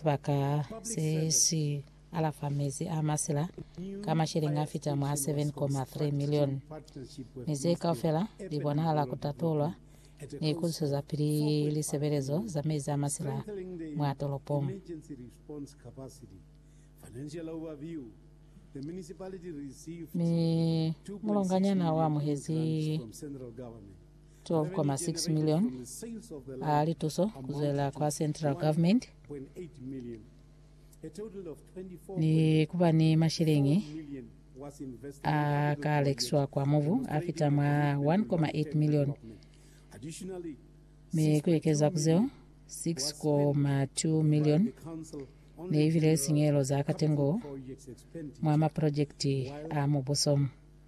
Sibaka se si alafa mezi a masila ka masheleñi a fita mwa 7.3 milioni, mi ze kaufela li bonahala ku tatolwa ni ku zweza pili lisebelezo za mezi a masila mwa tolopong. Mi mulonganyana u amuhezi 12.6 milioni a lituso kuzwela kwa central government ni kuba ni mashilingi a ka lekiswa kwa mubu a fita mwa 1.8 milioni mi ku ekeza ku zeo 6.2 milioni ne ibile sinyehelo za katengo mwa maprojekiti a mubuso.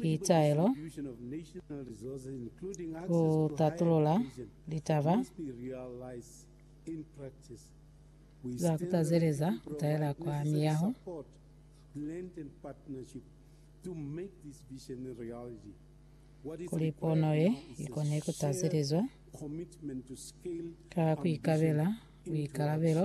Pitaelo ku tatulula litaba za ku tazeleza ku taela kwa miyaho. Kuli pono ye i kone ku tazelezwa ka ku ikabela buikalabelo,